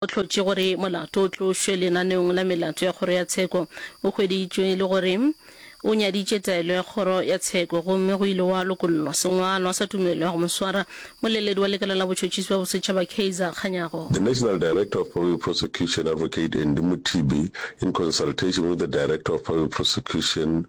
O hlotše gore molato o tlošwe lenaneong la melato ya Kgoro ya Tsheko. O hweditšwe e le gore o nyaditše taelo ya Kgoro ya Tsheko gomme go ile gwa lokollwa sengwalwa sa tumelo ya go mo swara. Moleledi wa lekala la botšhotšhisi bja bosetšhaba Kaizer Kganyago. The National Director of Public Prosecution Advocate Andy Mothibi in consultation with the Director of Public Prosecution,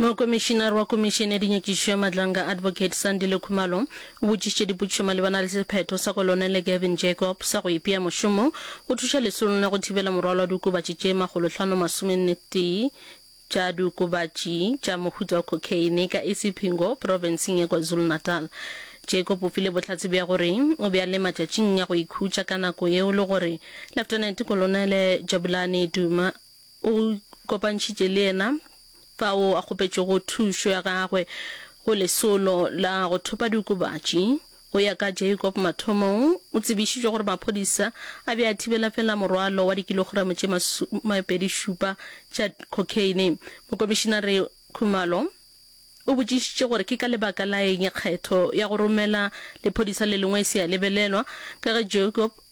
Mokomišinare wa Komišene ya Dinyakišišo ya Madlanga, Advocate Sandile Khumalo, o botšišitše dipotšišo malebana le sephetho sa Kolonele Gavin Jacob sa go ipea mošomong go thuša lesolong la go thibela morwalo wa diokobatši tše makgolohlano masomennetee tša diokobatši tša mohuta wa cocaine ka Isipingo, profenseng ya KwaZulu-Natal. Jacob o file bohlatse bja gore o be a le matšatšing a go ikhutša ka nako yeo le gore Leftenente Kolonele Jabulani Duma, O go kopantšhitše le yena fao a kgopetšego thušo ya gagwe go lesolo la go thopa diokobatši. Go ya ka Jacob, mathomong o tsebišitšwe gore maphodisa a be a thibela feela morwalo wa dikilogramo tše masomepedi-šupa tša cocaine. Mokomišinare Khumalo o botšišitše gore ke ka lebaka la eng kgetho ya go romela lephodisa le lengwe e se ya lebelelwa ka ge Jacob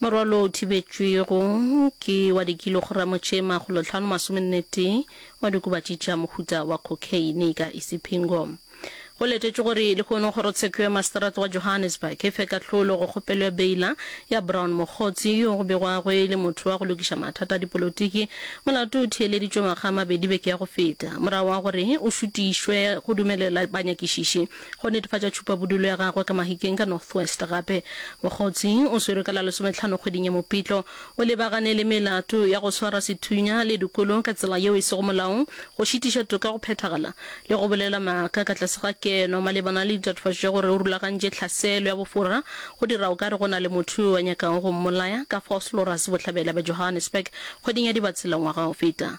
Morwalo o thibetšwego ke wa dikilogramo tše makgolo hlano masomennetee wa dikobatši tša mohuta wa khokheine ka Isipingo. Go letetšwe gore lehono kgorotsheko ya maseterata wa Johannesburg e fe kahlolo go kgopelo ya beila ya Brown Mogotsi yo go begwago e le motho wa go lokiša mathata a dipolotiki. Molato o theeleditšwe ngwaga a mabedi beke ya go feta morago ga gore o šutišwe go dumelela banyakišiši go netefatša tšhupabodulo ya gagwe ka Mahikeng ka North West. Gape Mokgotsi o swerwe ka la lesometlhano kgweding ya Mopitlo o lebagane le melato ya go swara sethunya le dikolo ka tsela yeo e sego molaong, go šitiša toka go phethagala le go bolela maaka ka tlase ga keno malebana le ditatofatšo tša gore o rulagantše tlhaselo ya bofora go dira o ka re go na le motho yo a nyakago go mmolaya ka Vosloorus bohlabela bja Johannesburg kgweding ya Dibatsela ngwaga o feta.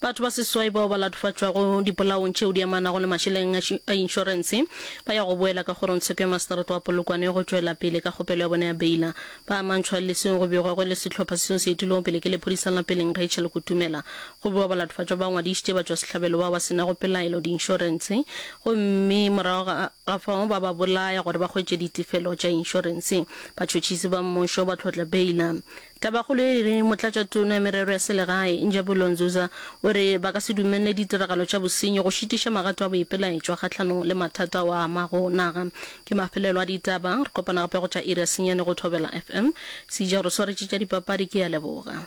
Batho ba seswai bao ba latofatšwago dipolaong tšeo di amanago le mašeleng a inšorense ba ya go boela ka kgorongtsheko ya maseterata wa Polokwane ya go tšwela pele ka kgopelo ya bona ya beila. Ba amantšhwa le seo go begwago e le sehlopha seo se etilwego pele ke lephodisa la peleng Rachel Kutumela. Go bewa balatofatšwa ba ngwadišitše batšwasehlabelo bao ba se nago pelaelo diinšorense gomme morago ga ga fao ba ba bolaya gore ba hwetše ditefelo tša inšorense. Batšhotšhisi ba mmušo ba tlhotla beila. Tabakgolo ye e re Motlatšatona ya Merero ya Selegae, Njabulo Nzuza, o re ba ka se dumelele ditiragalo tša bosenyi go šitiša magato a boipelaetšwa kgahlanong le mathata ao a amago naga. Ke mafelelo a ditaba. Re kopana gape go tša iri ya senyane go Thobela FM. Seija Rosoritše tša dipapadi ke a leboga.